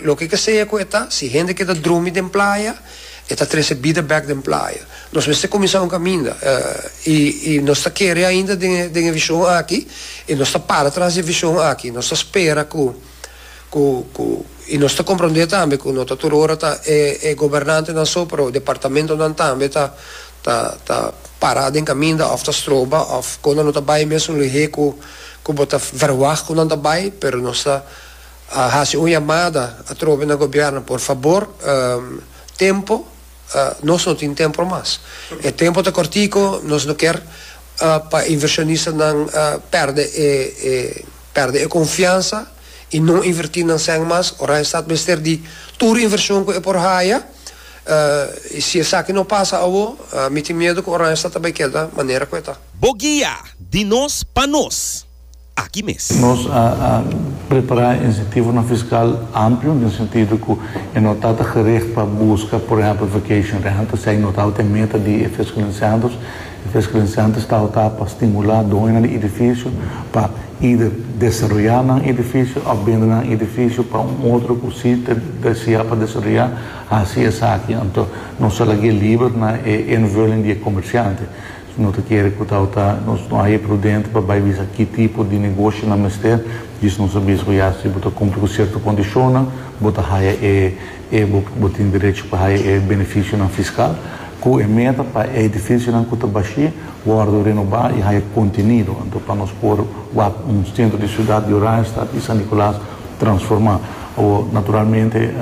Loke ke sea ku e ta, si hende ke ta drumi den playa, e ta trese bida bèk den playa. Nos mester kuminsá un kaminda, i i nos ta kere ainda den e den e vishon aki, i nos ta para tras di e vishon aki. Nos ta spera ku ku ku i nos ta komprondé tambe ku no ta tur ora ta e e gobernantenan so, pero departamentonan tambe ta ta ta pará den kaminda òf ta stroba òf kon nan lo ta bai mes un luhé ku ku bo ta vèrwagt ku nan ta bai, pero nos ta. A hasi un yamada atrobe na gobierno, por fabor tempo nos no tin tempo mas, e tempo ta cortico, nos no kier pa invershonistanan perde e perde e confiansa y no inverti nan sèn mas, ora e stat mester di tur invershon cu e por haya, y si esaki no pasa awo mi tin miedo cu Oranjestad ta bay keda manera cu e ta. Bo guia di nos pa nos. aki mes. Nos a prepará e insentivonan fiskal amplio den sentido ku e no ta ta gericht pa buska, por ehèmpel, vacation rental, esei no tabata e meta di e fiscalinsentros. E fiscalinsentros tabata pa stimulá doñonan di edifisio pa eider desaroyá nan edifisio òf bende nan edifisio pa un otro ku si ta desiá pa desaroyá hasi esaki. Anto nos a lagu'e liber na e invulling di e komersiante. No ta kere ku tau ta nos no haña prudente pa bai bisa ki tipo di negoshonan mester. Djis nos a bisa ku ya si bo ta kumpli ku sierto kondishonnan bo ta haña e e bo tin derecho pa haña e benefisionan fiskal, ku e meta pa e edifisionan ku ta bashí wòrdu renobá i haña kontenido. Anto pa nos por wak un sentro di siudat di Oranje Stad i San Nikolaas transformá. Awor, naturalmente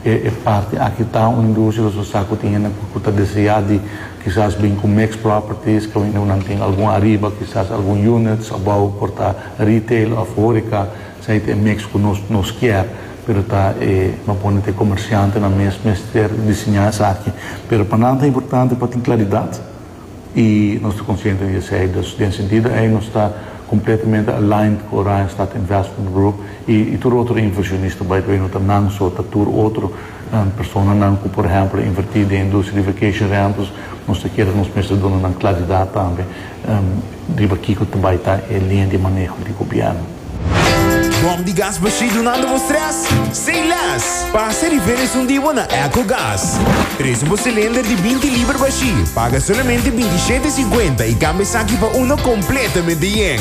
e parti aki ta un industria nos a sa ku tin hende ku ta deseá di Kisas bin ku mixed properties ku nan tin algun ariba kisas algun units abou por ta retail of horeca esei ta e mix ku nos nos kier pero ta e no pone ta e comerciantenan mes mester diseña esaki pero pa nan ta importante pa tin claridad y nos ta consciente di esei dus den sentido ei nos ta completamente aligned ku Orion Stad Investment Group y tur otro inversionista by the way no ta nan so ta tur otro Personanan cu por ehemplo a inverti den industria di vacation rentals nos ta kere nos mester duna nan claridad tambe riba kico ta bay ta e linea di maneho di gobierno. Bom di gas bashí dunando bo stress? Say less! Pasa riba esun di bo na Echo Gas. Trece bo cilinder di binti liber bashí, paga solamente binti shete cincuenta y cambia esaki pa uno completamente yen.